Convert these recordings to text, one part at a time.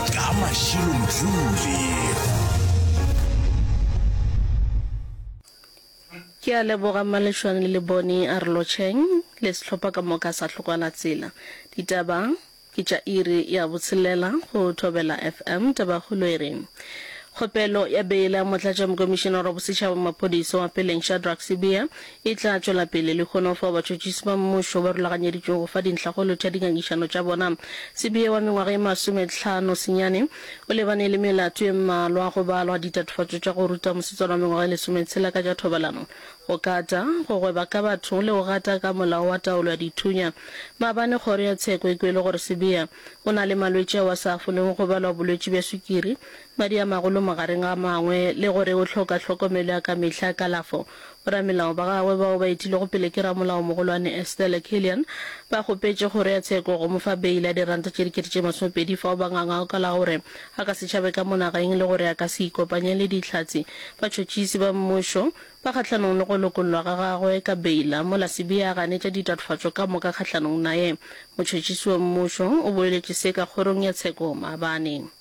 ka mašilo mojule Ke a leboga Malešwane le Lebone a re lotšheng le sehlopha ka moka sa Hlokwana Tsela. Ditaba ke tša iri ya botshelela go Thobela FM. Tabakgolo e re, Kgopelo ya beile ya Motlatšamokomišenare wa Bosetšhaba wa Maphodisa wa Peleng Shadrack Sibiya E tla tšwela pele lehono fao batšhotšhisi ba mmušo ba rulaganyeditšwego go fa dintlha go lotšha dingangišano tša bona. Sibiya wa mengwaga e masometlhano senyane o lebane le melato e mmalwa, go balwa ditatofatšo tša go ruta mosetsana wa mengwaga e lesometshela ka tša thobalano, go kata, go gweba ka batho le go gata ka molao wa taolo ya dithunya. Maabane kgoro ya tsheko e kwele gore Sibiya o na le malwetši ao a sa folego go balwa bolwetši bja swikiri, madi a magolo magareng ga a mangwe le gore o hloka tlhokomelo ya ka mehla ya kalafo Boramelao ba gagwe bao ba etilwego pele ke Ramolaomogolwane Estelle Killian ba kgopetše kgoro ya tsheko go mo fa beile ya diranta tše dikete tše masomepedi fao ba ngangago ka la gore a ka se tšhabe ka monagaeng le gore a ka se ikopanye le dihlatse, batšhotšisi, ba mmušo ba kgahlanong le go lokollwa ga gagwe ka beila mola Sibiya a ganetša ditatofatšo ka moka kgahlanong naye. Motšhotšisi wa mmušo o boeletše se ka kgorong ya tsheko maabane.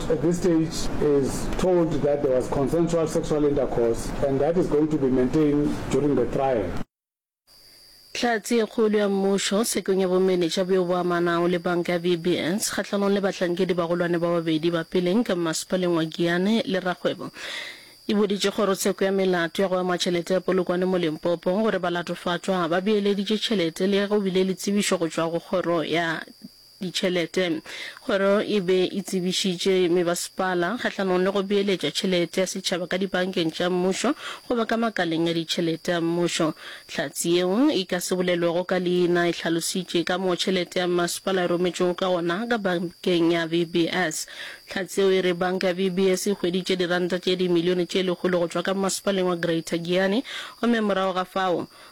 At this stage is told that there was consensual sexual intercourse and that is going to be maintained during the trial. Hlatse ye kgolo ya mmušo tshekong ya bomenetša bjo bo amanago le banka ya VBS kgahlanong le bahlankedi bagolwane ba babedi ba peleng ka mmasepaleng wa Giyani le rakgwebo e boditše kgorotsheko ya melato ya go ama tšhelete ya polokwane mo Limpopo gore balatofatšwa ba beeleditše tšhelete le ge go bile le tsebišo go tšwa go kgoro ya ditšhelete. Kgoro e be e tsebišitše mebasepala kgahlanong le go beeletša tšhelete ya setšhaba ka dibankeng tša mmušo goba ka makaleng a ditšhelete a mmušo. Hlatse yeo e ka se bolelwego ka leina e hlalositše ka moo tšhelete ya mmasepala e rometšwego ka gona ka bankeng ya VBS. Hlatse yeo e re banka ya VBS e hweditše diranta tše dimilione tše lekgolo go tšwa ka mmasepaleng wa Greater Giyani gomme morago ga fao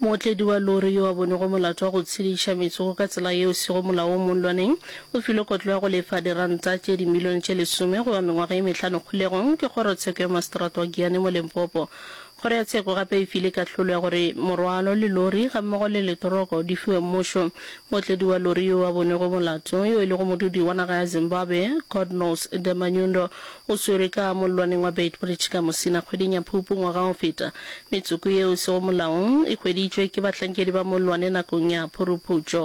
Mootledi wa lori yo a bonego molato wa go tshediša metsogo ka tsela yeo sego molaong mo nlwaneng o filwe kotlo ya go lefa diranta tše dimilione tše lesome goba mengwaga ye mehlano kgolegong ke Kgorotsheko ya Maseterata wa Giyani mo Limpopo. Kgoro ya Tsheko gape e file kahlolo ya gore morwalo le lori gammogo le letoroko di fiwe mmušo. Mootledi wa lori yo a bonego molato yo e lego modudi wa naga ya Zimbabwe, Godknows Demanyundo O swerwe ka mollwaneng wa Beitbridge ka Musina kgweding ya Phupu ngwaga o feta. Metsoko yeo e sego molaong e hweditšwe ke bahlankedi ba mollwane nakong ya phuruphutšo.